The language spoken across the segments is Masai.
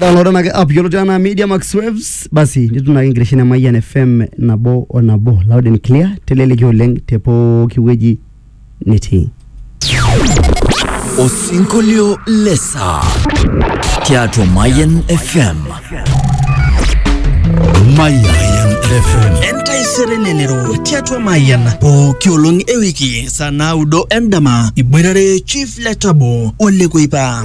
Download na app yioloti anaa Media Max Waves. Basi nitum ake enkitesheni e Mayian FM nabo o nabo loud and clear teleleki oleng te pooki wueji nitii. Osinkolio le saa tiatua Mayan FM. Mayan FM. Entaisere lelero tiatua Mayan pooki olong ewiki saa naudo endama iboitare Chief Letabo Ole Kuipa.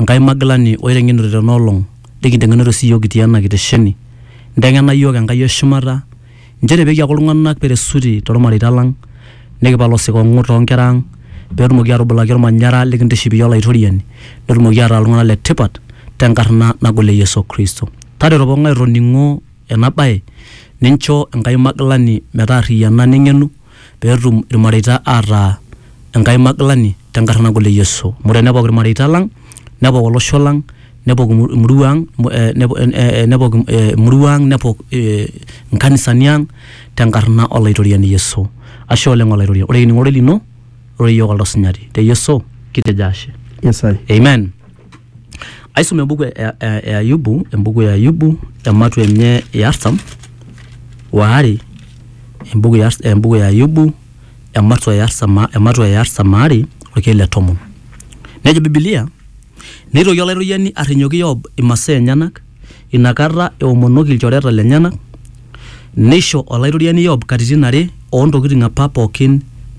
Enkai magilani oiteng'enute tena olong, nikinteng'enute sii iyiook kitii ena kitesheni. Inteng'ena iyiook Enkai o shumata nchere pee kiaku iltung'anak peresuti too lmareita lang, nikipal osikong'u too nkera ang, pee etumoki atubulaki olmanyara likintiship iyie Olaitoriani, netumoki ataa iltung'anak le tipat te nkarna nagol e Yesu Kristo. Tareto pooki ng'ae otoning'o ena bae nincho Enkai magilani metaarriyiana neng'enu pee etum ilmareita ataa Enkai magilani te nkarna nagol e Yesu. Amu tenepok ilmareita lang, nepok olosho lang, nepok emurua ang, nepok emurua ang, nepok inkanisani ang te nkarna o Laitoriani Yesu. Ashe oleng Olaitoriani. Ore kining ororei lino, ore iyiook oldo sinyati. Te Yesu kitejo ashe. Amen. Aisum embuku e, e, e Ayubu, embuku e Ayubu ematu enye e artam waare, embuku e, embuku e Ayubu ematu e artam, ematu e artam aare orkeek le tomon. Nejo Biblia, neitoki olaitoriani arrinyoki Yob imasaa enyenak Ina kata eomonoki ilchoreta lenyena, neisho Olaitoriani Yob katitin are oo ntokitin apa pooki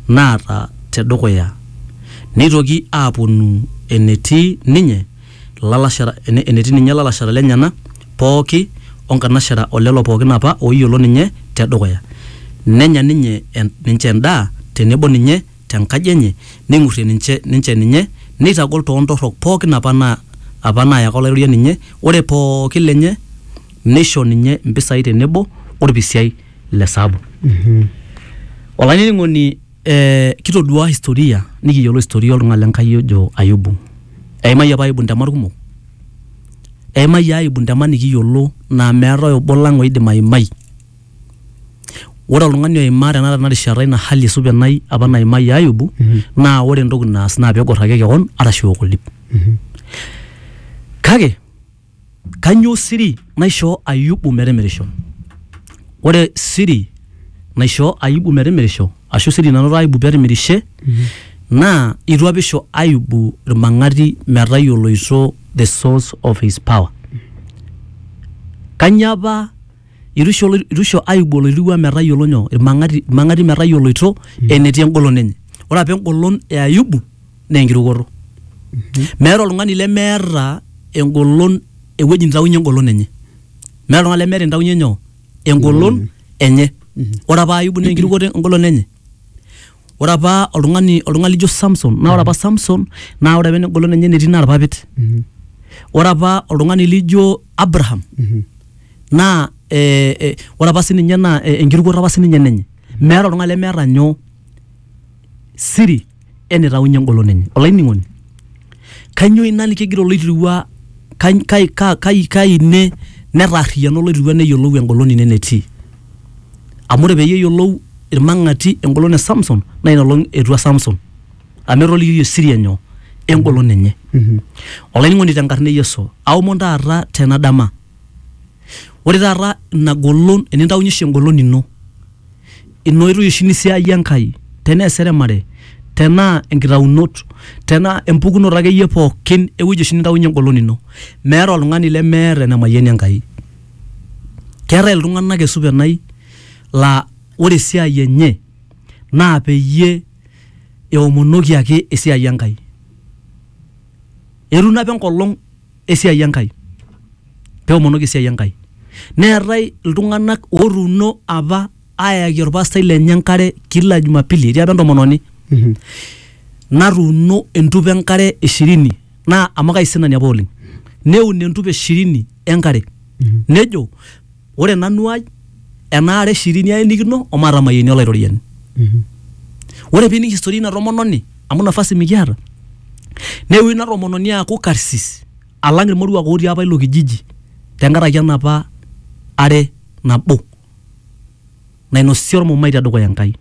naata te dukuya. Neitoki aapuonu enetii ninye ilalashera lenyena pooki o nkanashera o lelo pooki apa ooyiolo ninye te dukuya. Nenya ninye ninche endaa tenebo ninye. te nkaji enye, neing'urrie ninche, ninche ninye, neitagol too ntorrok pooki apa na, apa naayaka olairorie ninye, ore pooki lenye neisho ninye mpisai tenebo olpisiai le saabu. Olainining'oni, eh, kitoduaa historia nikiyiolo historia oltung'ani le Nkai ojo Ayubu. Eimayie apa Ayubu ntemat kumok, eimayie Ayubu ntemat nikiyiolo naa meetae obo lang oidim aimai. Ore oltung'ani oimaa tenakata tena rishata ina hali supenai apa naimayie Ayubu naa ore entoki naas naa peegor ake keon arashu eok oldip. Kake kanyoo siri naishoo Ayubu metimirisho? Ore siri naishoo Ayubu metimirisho ashu siri nanoto Ayubu petimirishe naa itu apa isho Ayubu irmang'ati metayioloito the source of his power. Kanyoo apa itusho olo- itusho aibu oloirirua metayiolo nyoo irmang'ati irmang'ati metayioloito enetii engolon enye ore apa engolon e ayubu naa enkirukoto meeta oltung'ani lemeeta engolon ewueji nitaunye engolon enye meeta oltung'ani lemeeta entaunye nyoo engolon enye ore apa ayubu naa enkirukoto engolon enye ore apa oltung'ani oltung'ani lijo Samson naa ore apa Samson naa ore apa engolon enye netii naa irpapit Mhm. ore apa oltung'ani lijo Abraham Mhm. naa eh, eh, ore apa sininye naa eh, enkirukoto apa sininye nenye meeta oltung'ani lemeeta nyoo siri enitaunye engolon enye olainining'oni kanyoo ina nikigira oloitirua kai, kai, kai, kai, kai ine netaarriyiana oloitirua neyiolou engolon ine netii amu ore peyie eyiolou irmang'ati engolon e Samson naa ina olong etua Samson amu etolikioyie siri enyoo engolon enye olainining'oni tenkarna e Yesu aomon taata tena dama ore taata ina golon enintaunyie oshi engolon ino ina oitoi oshi nisiayie Enkai tenaa eseremare tenaa enkitaunot tenaa empukunoto akeyie pookin ewueji oshi nintaunyie engolon ino meeta oltung'ani lemeeta enemayianie Enkai. Keetae iltung'anak esup enai laa ore esiai enye naa peyie eomonoki ake esiai Enkai. Etum naapa enkolong esiai Enkai peomonoki esiai Enkai. Neetae iltung'anak otuuno apa ayaki olpastai lenye enkare kila jumapili etii apa entomononi Mhm. natuuno entupa enkare ishirini naa amu kaisinani apa oleng neun entupa ishirini enkare nejo ore nanu ai ena are ishirini aenikino omatamayieni olaitoriani Mhm. ore pining historia ina tomononi amu nafasi mikiata neewuo ina tomononi aaku karsis alang irmoruak otii apa ilo kijiji tenkaraki enapa are nabo nainosie olmumai te dukuya Enkai.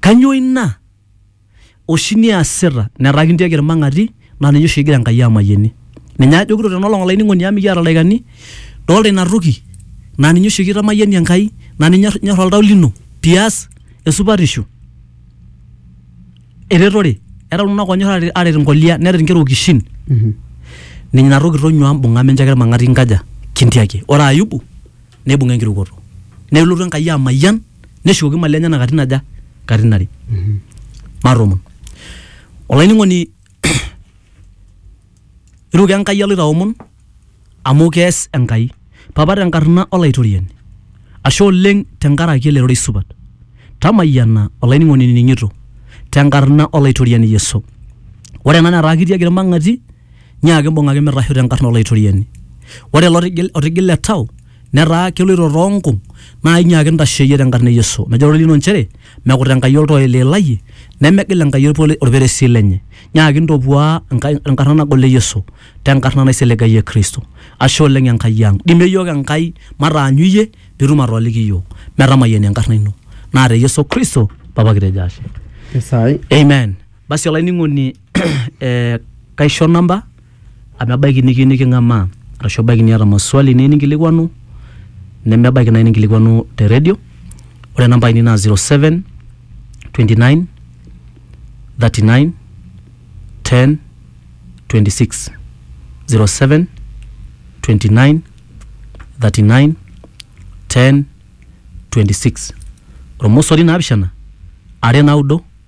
Kainyoo ina oshi niasita? Netaa kintiaki ilmang'ati naa ninye oshi egira Enkai amayianie. Ninye ajokito tena olong olainining'oni amu mikiata ildaikani, dolita ina toki naa ninye oshi kitamayianie Enkai naa ninye enyor oltau lino pias esupatisho. eretore era iltung'anak onyor aret- aret inkolia neret inkera okishin Mhm. ninye inatoki tonyua mbung'a mincho ake irmang'ati inkaja kintiaki ore ayubu neibung'a enkirukoto nelotu enkai amayian neshukoki imali enyenak katitin aja katitin are matomon olainining'oni Iruko Enkai aloito aomon amu kees Enkai. Papa te nkarna Olaitoriani, ashe oleng te nkaraki ele rorei supat. Tamayiana olainining'oni inining'ito te nkarna Olaitoriani Yesu. Ore ena netaa kitiaki ilmang'ati nyiaki imbung'aki mitasho te nkarna Olaitoriani. Ore ilo otigile etau netaa keloito too nkung naa inyiaki intasho iyie te nkarna e Yesu. Nejo ororei lino inchere Mekut Enkai oltoo oiliilayie, nemegil Enkai olperesil lenye. Nyaaki ntopuaa enkarna nagol e Yesu te nkarna naisiligayie Kristo. Ashe oleng Enkai ang. Dimie iyiook Enkai mataanyu iyie pee itum atooliki iyiook. Metamayiani enkarna ino. Naa te Yesu Kristo Papa kitejo ashe. Amen. Basi olainining'oni kaisho namba. amu ebaiki nikiyieu niking'amaa arashu ebaiki niata maswali niyieu ninkilikuanu nemebaiki naaji ninkilikuanu te redio ore inamba ainei naa 0729391026 0729391026 ormosori naapishana are naudo.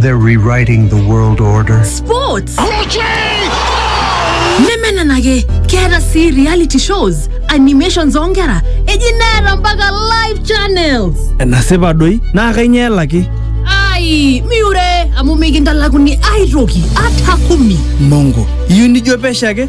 They're rewriting the world order. Sports! nemenenake keeta sii reality shows animations oonkera eji neeta mpaka live channels enasipa doi naa kainyoo elaki ai miure amu mikintalakuni aitoki ata kumi mongo iyieu nijo pesho ake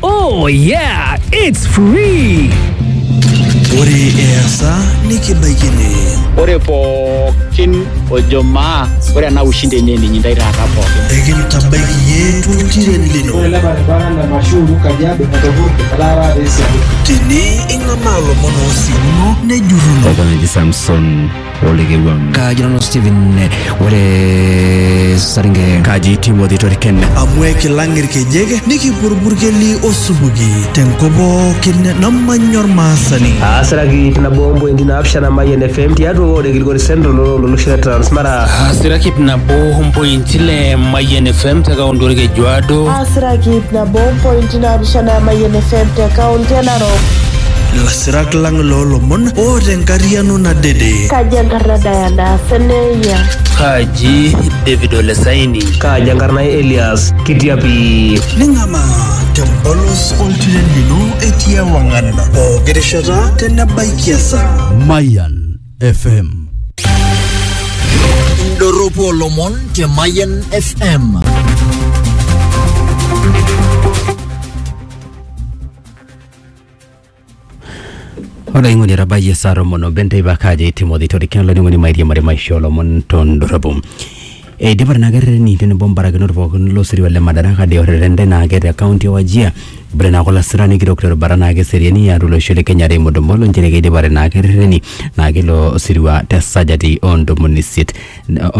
Oh yeah, it's free. Ore easa nikibaikini. Ore pookin ojo maa ore ena ushindi enye ninyi ndai taata pookin. Ekintabaiki yie tuntiren lino. Ore ele baribara le Mashuru Kajiado etopurte etaa taata esiadi. Tene ing'amaa lomon oosiuno nejurruno. Oltung'ani Samson olekewang kaji nanu Steven ore saringe kaji Timothy Toriken amu ekilang irkejek nikipurburkeli osupuki tenkop pookin namanya ormaasani aasiraki ip nabo ompointi naapishana Mayian FM tiatua ward e Kilgori Central olosho le Transmara aasiraki ip nabo ompointi ile Mayian FM te kaunti orkejuado aasiraki ip nabo ompointi naapishana Mayian FM te kaunti e Narok Sirak lang loolomon o tenkariano nadede. Kaji enkarna Diana Seneya? Kaji David Olesaini? Kaji enkarna Elias Kitiapi? Ning'ama tempolos oltiren lino etii ewang'an pooki rishata tenebaiki esaa. Mayan FM. Indorropu olomon te Mayan FM. olaing'oni etabayie saa tomon obo enteipa kaji timothy torikino olainining'oni mairiamari maisha olomon tondorropu eidipa nena kerrereni tenebo mbarakinot pookin losirua le madaraka de orreren lenaake te kaunti e wajia bore naake olasirani kitok terubata naake eseriani atua olosho le kenya Raymond Omolo nchere keidipate naa kerrereni naa kilo sirua te sajati oo ntomoni isiet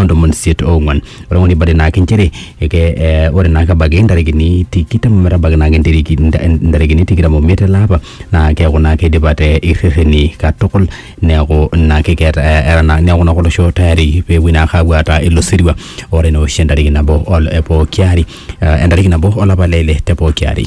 ontomoni isiet oong'uan ore ng'ole ibade naake inchere eke eh, ore naake ebaiki intarikini tikitam ometabaiki naake intiriki- inta- intarikini tikitam omiet ele apa naa keeku naake idipate irrereni katukul neeku naake keeta eh, era naa neeku naake olosho tayari peepuoi naake aapuo aata ilo sirua ore ina oshi entariki nabo ol- e pooki ari eh, entariki nabo olapa le ile te pooki ari.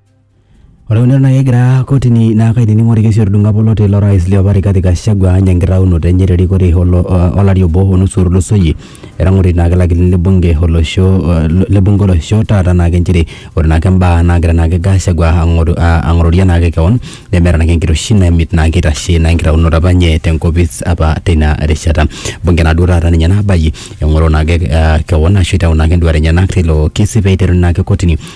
Ore eunore naa kegira kotini naa kainining orkesi otudung'o apa oloti lo rais liopa Rigathi Gachagua anya enkitaunoto enye terikore olo olari obo onusu otulusoyie etang'oroki naake ilakilini le bunge olosho le bunge olosho taata naake inchere ore naake imbaa nagira naake Gachagua ang'oru ang'ororie naake kewon nemeeta naake enkiroshi nemit naake eitashe naa enkitaunoto apa enye tenkopis apa teina rishata bunge naaduo taata ninye nabayie eng'oro naake kewon ashu itau naake induat enyenak teilo kesi peiteruni naake kotini.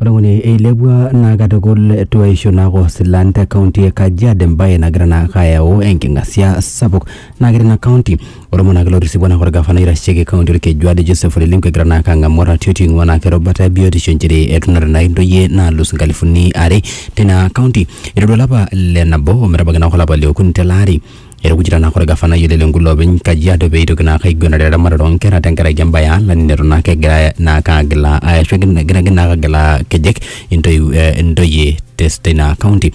Ore ng'uni eilepua naa katukul tuaishu naaku silan te kaunti e Kajiado embaye nagira naake ayau enking'asia sapuk naa kore ina kaunti ore olmoneaki lotisipua naa olgafanai oitasheki kaunti olkeju ado Joseph Ole Lenku egira naake ang'amu oratioti oing'ua naake erubata e biotisho inchere etunore naake intoyie naalus inkalifuni are tina kaunti. Eiteru olapa le nabo ometabaiki naake olapa le okuni tele ari Etukuja naa kore gafanai ole Lenku loopeny Kajiado pee eitoki naake aiguanare eramatare oo nkera tenkaraki embae e alani neton naake egira naake agilaa arashu egira naake agilaa nkejek intoyie teina kaunti.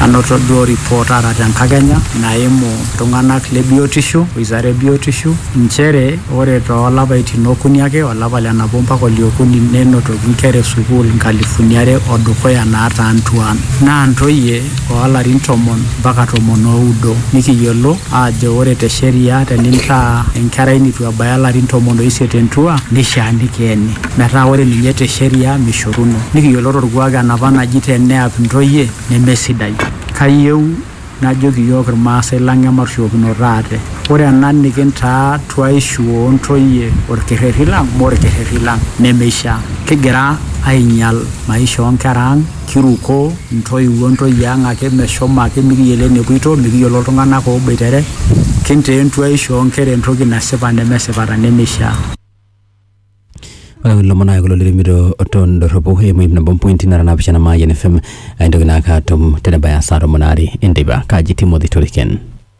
Anoto duo report taata tenkakenya naimu iltung'anak le biotisho, wizara e biotisho, inchere ore too lapaitin okuni ake, olapa le nabo mpaka ole okuni nenotoki inkera e sukuul inkalifuni are o dukuya naataa intuaan. Naa intoyie. oo larin tomon mpaka tomon o udo, nikiyiolo aajo ore te sheria tenintaa enkerai neitu ebaya larin tomon o isiet entua neishaa nikeeni. Metaa ore ninye te sheria meishoruno. Nikiyiolo to lkuak enapa naji te neap ntoyie neme sidai. Kayieu najoki iyiook Ilmaasai lang ematushukokinooto ate. Ore ena nikintaa tuaishu oo ntoyie olkerreri lang mme olkerreri lang nemeishaa. Kigira ainyial maisha oo nkera ang. Kiruko ntoiwuo ntoyie ang ake meshomo ake mikiyiolo enepuito, mikiyiolo iltung'anak ooboitere, kintaa entuaishu oo nkera entoki nasipa nemesipa ta nemeishaa. Ore kulo omon naa kulo litumito to ndorropu eimu ip nabo o mpointi nara naapishana Mayian FM. Aintoki naake atum tenebaya saa tomon aare enteipa. Kaji Timothy Toriken.